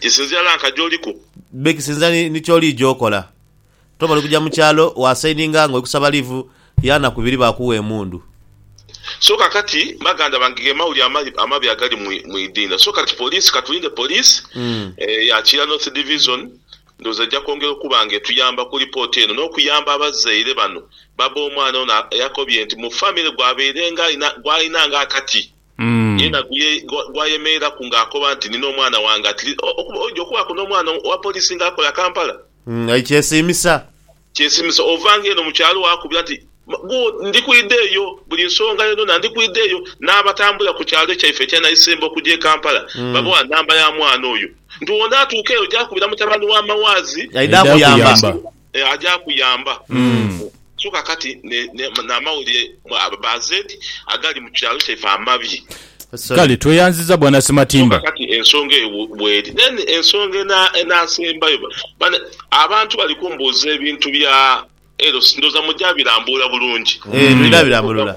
Kisinzira na nka gyoliku. May kisinzira ni kyolidha okola. Toba oli kuja mu kyalo wa sayininga nga oli kusaba liivu ya naku ibiri bakuwa emundu. So kakati baganda bange ge mawulire amabi amabi agali mu idinha. So kati poliisi katulinde poliisi ya Kira North Division ndhowooza eja kwongera okuba nga etuyamba ku lipooti eno n'okuyamba abazaire bano. Bba b'omwana ono yakobye nti mu famire gwabairenga alina gwalinanga akati. Yena gwayemeeraku nga akoba nti nina omwana wange at least okuba oidhi okubaaku n'omwana owa poliisi nga akola Kampala. Aye kyesiimisa. Kyesiimisa ova nga eno mu kyalo waakubira nti gu ndi kwidha eyo buli nsonga yonayona ndi kwidha eyo. N'abatambula ku kyalo kyaife ekya Naisembo okuja e Kampala babawa namba ya mwana oyo nti onaatuuka eyo oja kubira mutabani wa Mawaazi. Aidha akuyamba. eh, aja kuyamba mu so kakati ne, ne, n'amawulire bazeeti agali mu kyalo kyaife amabi. Kale tweyanziza bwana Ssematimba. So kakati ensonga eyo bweri. Then ensonga ena, enasembayo, bane, abantu bali kumbuuza ebintu bya LC, ndowooza muja birambuula bulungi. Eh, twira birambulula.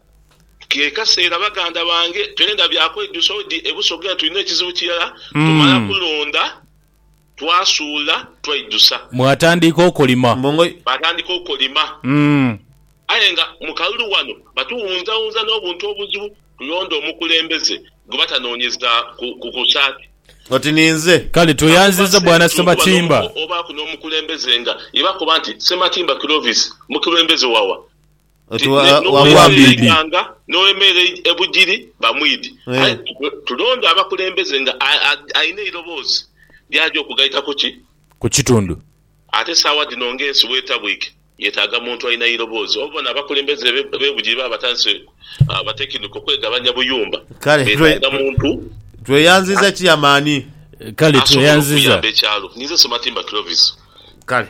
Kekaseera baganda bange twenda bya kwejusa odi e Busoga nga tulina ekizibu kirala, tumala kulonda twasuula twaijusa. Mwatandika okulima. Baatandika okulima aye nga mu kalulu ghano batuwunzawunza n'obuntu obuzibu kulonda omukulembeze gwe batanoonyeza ku kusaati. Oti ninze. Kale tweyanziza Bwana Ssematimba. Obaaku n'omukulembeze nga ye bakoba nti Ssematimba Clovis mukulembeze wawa? Oti wa- Ne- wa- n'ow'emeere Wambiidi. eighanga n'ow'emeere ei- ebugiri bamwidi. Eh. Aye tu- tulonde abakulembeze nga a- a- alina eiroboozi ly'aja okugaita ku ki? Ku kitundu. Ate saawa dhino ng'ensi bw'etabwike, yetaaga muntu alina eiroboozi. Obubona abakulembeze be- b'ebugiri baba batandise ah, batekiniko okwegabanya buyumba, Kale, twe- betaaga twe- muntu Tweyanziza Chairman. Kale asobola tweyanziza. okuyamba ekyalo. Ninze Sematimba Clovis. Kale.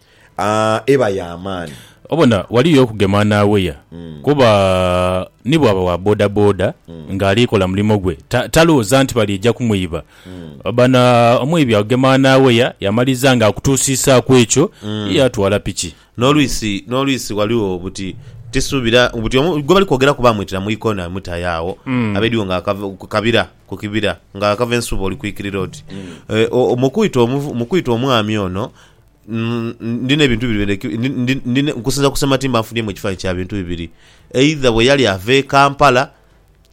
eba ya maani. Obona wali yo okugema n'aweya kuba ni bw'aba wa bodaboda ng'ali kola mulimo gwe talooza nti baliija kumwiba. Obona omwibi akugema n'aweya yamaliza ng'akutuusiisaaku ekyo ye yaatwala piki. N'olwisi n'olwisi ghaligho buti tisuubira buti omu gwe bali kwogeraku baamwitira mu ikoona ni mutayo agho abe ediwo ng'akava ku kabira ku kibira ng'akava ensuubo oli kwikirira oti mu kwita omuvu mu kwita omwami ono. Ndina ebintu bibiri bye ndhi, ndi nkusinza ku Ssematimba nfunhyemu ekifanhanhi kya bintu bibiri, eidha bwe yali ava e Kampala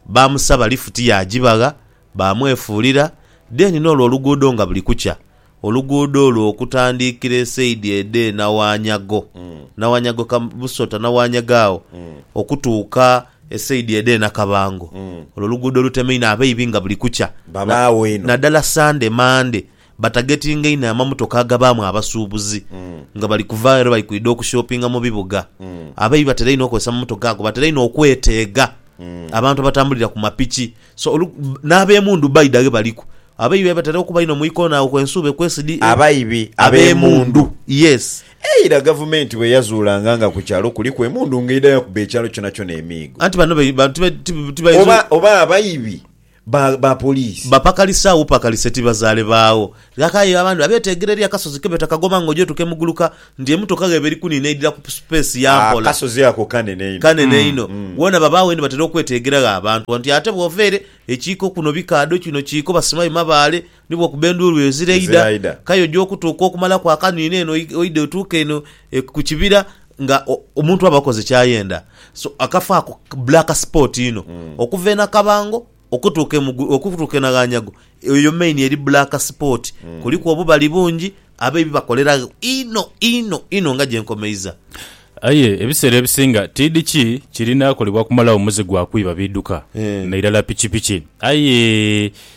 baamusaba lifuti yaagibagha baamwefuulira then n'olwo oluguudo nga buli kukya oluguudo olwo okutandiikira esaidi edh'e Nawanyago, Nawanyago Busota Nawanyago agho okutuuka esaidi edh'e Nakabango. Olwo oluguudo olutemaine abaibi nga buli kukya naddala Sande Mande. Batagetinga inho amamotoka agabaamu abasuubuzi nga bali kuva aye lwe bali kwidha okushopinga mu bibuga. Abaibi batera inho okozesa amamotoka ago. Batera inho okweteega abantu abatambulira ku mapiki. So, olu, n'ab'emundu baidha ghe baliku. Abaibi aye batera okuba inho mu ikoona agho kwe nsuuba ekwesidi. Abaibi ab'emundu. Yes. Eira Gavumenti bwe yazuulanga nga ku kyalo kuliku emundu ng'eidha yakuba ekyalo kyonakyona emiigo. Anti banho be, ba, tibe, tibe, tibainza. Oba, oba abaibi ba ba poliisi. Bapakalise agho bupakalise tibazaale baagho. Ghakayo abandi abeeteegera eri akasozi ke beeta Kagoma nga oja otuuka e Muguluka nti emotoka gheba eri kuniina eidhira ku space ya mpola. Akasozi ako kanene inho. Kanene inho. Wona babaagho ni batera okweteegera gho abantu nti ate bwova ere ekiiko kuno bikaadho kino kiiko basimayo mabaale Ni bw'okuba endhuulu ezira eidha, k'aye oja okutuuka okumalaku akaniino eno oidhe otuuke eno ku kibira nga omuntu aba akoze ky'ayenda. So, akafo ako black spot inho. Okuva e Nakabango okutuuka e Mugulu, okutuuka e Naghanyago, eyo main eri black spot. Kuliku obubali bungi abaibi bakolera gho inho, inho, inho nga gye nkomeiza. Aye ebiseera ebisinga tiidhi ki kirina kolebwa kumalagho muze gwa kwiba biduka nairala pikipiki. Aye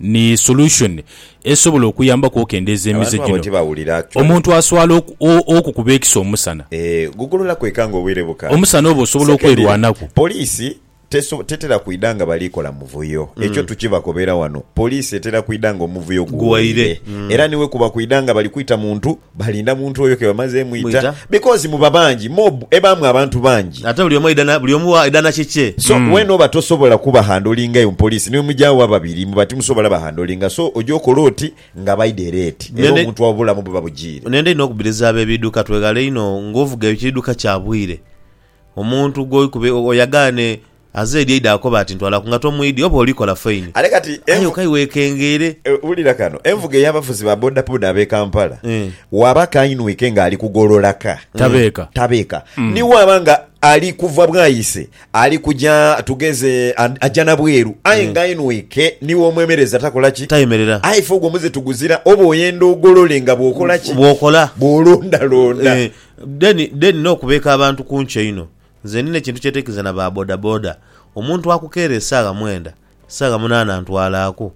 Ni solution esobola okuyambaku okendeeza emize Abantu abo gino. tibawulira actually. Omuntu aswala oku, o, okukuba ekiso omusana. Eeh gugulula kweka nga obwire bukaali. Omusana oba osobola Secondly, okwerwanaku. Police teso, tetera kwidha nga bali kola muvuyo. Ekyo tukibakobera wano. Police etera kwidha nga omuvuyo guweire. Guweire. Era ni wekuba kwidha nga bali kwita muntu. Balinda muntu oyo ke bamaze mwita Mwita. because muba bangi mob ebaamu abantu bangi. Ate buli omu aidha na, buli omu wa aidha na kikye. So wena oba tosobola kuba handlinga eyo mu police ni bwemugya agho ababiri muba timusobola ba handlinga so oja okola oti nga abaidha era eti era Nende- omuntu obulamu buba bujiire. Nenda inho okubiriza abebiduka twegale inho nga ovuga ekiduka kya bwire omuntu gwokuba oyagane Aze eri eidha akoba ati, Ntwala ku ngato mu idi oba olikola faini. Ale kati Aye envu... kaiwekengeere. Wulira kano. Envuga ey'abavuzi ba bodaboda ab'e Kampala, Waaba akainwike ng'ali kugolola ka, Tabeeka. tabeeka. Ni waaba nga ali kuva Bwaise ali kuja tugeze aja na bweru aye ng'ainwike ni w'omwemereza takola ki? Tayemerera. Aye ife ogwo muze tuguzira oba oyenda ogolole nga bw'okola ki? Bw'okola. Bw'olondalonda. Eeh. Then, then n'okubeeka abantu kunki einho. Nze ndina ekintu kye nteekiriza na ba bodaboda, omuntu akukeera esaagha mwenda, saagha munaana antwalaaku.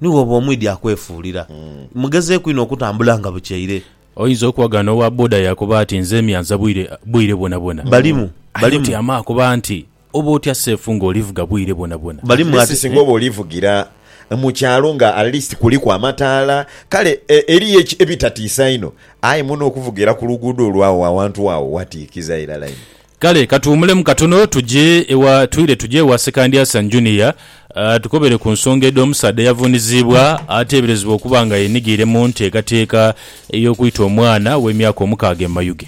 Ni bw'oba omwidhi akwefuulira. Mugezeeku inho okutambula nga bukyeire. Oyinza okuwaga n'owa boda yaakoba ati, Nze myanza bwire, bwire bwonabwona. Balimu, Aye balimu. otyama akoba nti, Oba otya seefu ng'olivuga bwire bwonabwona. Balimu Atleast ati, singa oba olivugira mu kyalo nga atleast kuliku amataala. Kale e, eriyo eki, ebitatiisa inho. Aye muno okuvugira ku luguudo olw'agho awantu agho watiikiza irala inho. Kale katuwumulemu katono tuje ewa twire tuje ewa Sekandyasa Junior atukobere ku nsonga edh'omusaadha eyavuuniziibwa ateeberezebwa okuba nga yenigiire mu nteekateeka ey'okwita omwana ow'emyaka omukaaga e Mayuge.